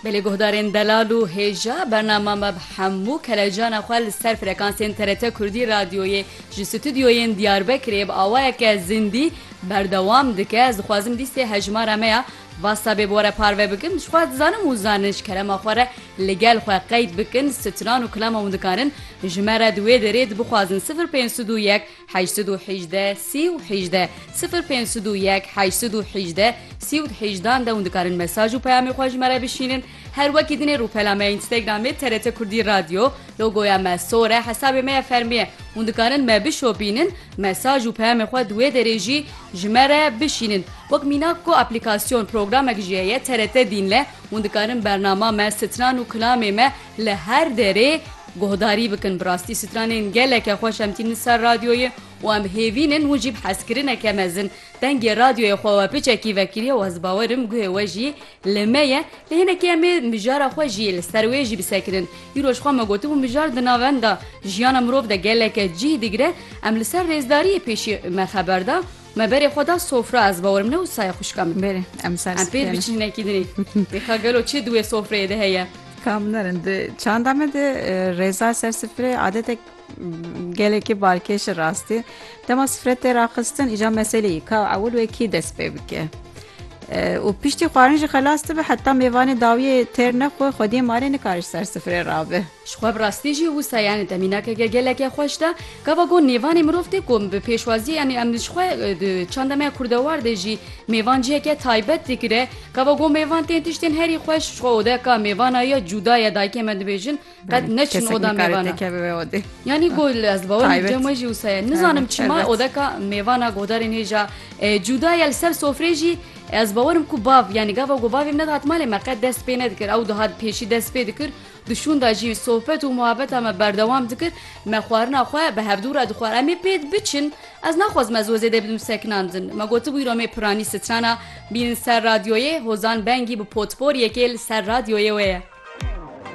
Belê guhdarên delal û hêja bernama me bi hemû kelecana xwe li ser frekansên TRT Kurdî Radyoyê ji stûdyoyên Diyarbekirê bi awayeke zindî berdewam dike. Ez dixwazim lîstê hejmara me ya WhatsAppê bi we re parve bikim. Ji xwe dizanim û zanin ji kerema xwe re li gel xwe qeyd bikin. Stran û klama hûn dikarin ji me re di wê derê di bixwazin sifir pênc sud û yek Heşt sed û hîjde sî û hîjde sifir pênc sed û yek heşt sed û hîjde sî û hîjdan de hûn dikarin mesaj û peyamê xwe ji me re bişînin her wekî dinê rûpela me ya Instagramê TRT Kurdî Radio logoya me sor e hesabê me ya fermî ye hûn dikarin me bişopînin mesaj û peyamê xwe di wê derê jî ji me re bişînin wek mînak ku aplîkasyon programek jî heye TRT Dînle hûn dikarin bernama me stran û kilamê me li her derê Guhdarî bikin bi rastî stranên geleke xweş em tînin ser radyoyê û em hêvîn in hûn jî bi hezkirineke mezin dengê radyoyê xwe we biçekî vekiriye û ez bawer im guhê we jî li me ye lê hinekî em ê mijara xwe jî li ser wê jî bisekinin îro ji xwe me gotibû mijar di navenda jiyana mirov de geleke cîh digire em li ser rêzdariyê pêşî me xeber da Me berê xwe da sofra ez bawerim ne wisa ye xwişka min. Berê em ser Em pêr biçin hinekî dinê. Dê ka gelo çi di wê sofreyê de heye. Kamnerin di çanda me de rêza ser sifrê adetek gelekî balkêşi rastî. Dema sifre tê raxistin îja meselê yî ka ewil wê kî dest pê bike. û piştî xwarin jî xelas dibe heta mêvanê dawiyê têr nexwe xwediyê malê nikariş ser sifrê rabe. Ji xwe bi rastî jî wisa yanê te mînakeke geleke xweş de. Gava got nêvanê mirov tê ku bi pêşwazî yanê em ji xwe di çanda me kurdewar de jî mêvan ciheke taybet digire. Gava got mêvan tên tiştên herî xweş ji xwe ode ka mêvana ya cuda ya dayikê me dibêjin qet neçin oda mêvana. Yanî got ez li bawer cem we jî wisa ye. Nizanim çima odeka mêvana guhdarên hêja cuda ya li ser sofrê jî ez bawerim ku bav yanî gava got bavê min nedihat malê me qet dest pê nedikir ew dihat pêşî dest pê dikir Di şûnda jî sohbet û muhabeta me berdewam dikir. Me xwarina xwe bi hevdû re dixwar. Em ê pêd biçin. Ez naxwazim ez wê zêde bidim sekinandin. Me gotibû îro mê piranî strana bînin ser radyoyê. Hozan Bengî bi potporiyekê li ser radyoyê wê ye.